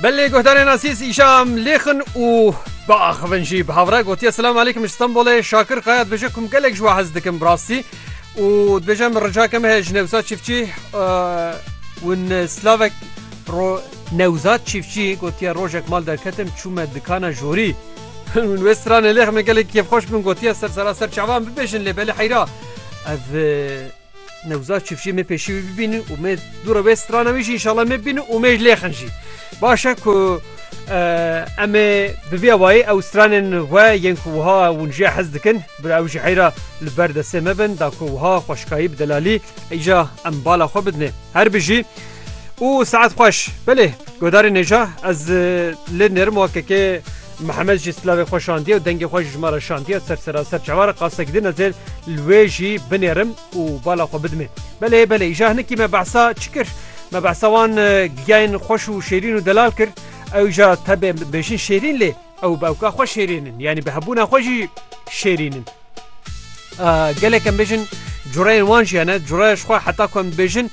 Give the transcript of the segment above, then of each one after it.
Belê guhdarên asîs îşam lêxin û biaxivin jî bi havre gotiye selam alîkim ji Stenbolê Şakir Kaya dibêje kum gelek ji we hez dikim bi rastî û dibêje min ricake me heye ji Newsa Çîfçî win slavek ro Newza Çîfçî gotiye rojek mal derketim çûme dikana jorî win wê stranê lêx me gelek kêfxweş bin gotiye ser seraser çavan bibêjin lê belê heyra ev Newzad çiftçi me pêşî wî bibînin û me dû re wê strana wî jî înşallah me bînin û me ji lêxin jî. Baş e ku em ê bi vê awayî ew stranên we yên ku wiha hûn jê hez dikin bi ew ji heyra li ber destê me bin da ku wiha xweşikayî bi delalî îja em bala xwe bidinê. Her bijî û saet xweş. Belê Godarê Nêja ez lê nêrim wakekê Mihemed jî silavê xwe şandiye û dengê xwe ji ma re şandiye ser seraser çawa re qasek din ez ê li wê jî binêrim û bala xwe bidimê. Belê belê îja hinikî me behsa çi kir? Me behsa wan giyayên xweş û şêrîn û delal kir. Ew îja tebe bêjin şêrîn lê ew bi ewka xwe şêrîn in yanî bi hebûna xwe jî şêrîn in. Gelek em bêjin cureyên wan jî hene cureya ji xwe heta ku em dibêjin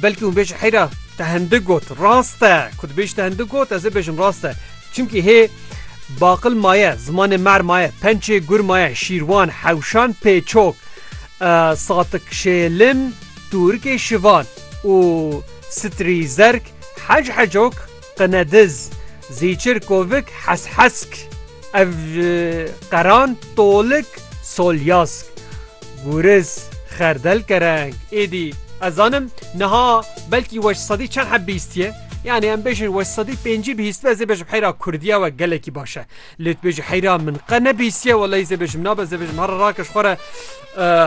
belkî hûn bêjin heyra te hindik got rast e ku dibêjî te hindik got ez ê bêjim rast e çimkî hê baqil maye zimanê mer maye pençê gur maye şîrwan hewşan pêçok satik şêlin tûrikê şivan û sitrî zerg hec hecok Qinediz, Zîçir Kovik Heshesk ev ji qeran Tolik Solyask Gûriz Xerdel Kereng êdî ez zanim niha belkî we ji sedî çend heb bihîstiye yanî em bêjin we ji sedî pêncî bihîstbe ez ê bêjim heyra Kurdiya we gelekî baş e lê tu bêjî heyra min qe nebihîstiye welahî ez ê bêjim nabe ez ê bêjim herre rakej xwe re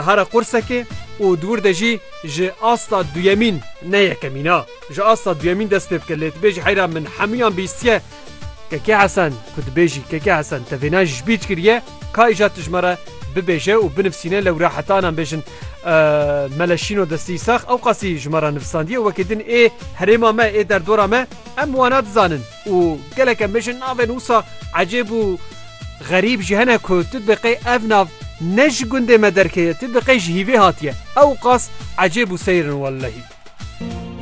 Hara qursekê û dûr de jî ji asta duyemîn ne yekemîn a. Ji asta duyemîn dest pê bike lê tu bêjî heyra min hemûyan bîstiye. Keke Hesen ku tu bêjî Keke Hesen te vêna ji bîr kiriye ka îcar tijme re bibêje û binivsîne lewra heta nan bêjin Meleşîno destî sax ewqasî ji me re nivisandiye û wekî din ê herêma me ê derdora me em wana dizanin. Û geleke me ji navên wisa ecêb û xerîb jî hene ku tu diqê ev nav ne ji gundê me derkeye, tu diqê ji hîvê hatiye. Ewqas ecêb û seyr in wellehî.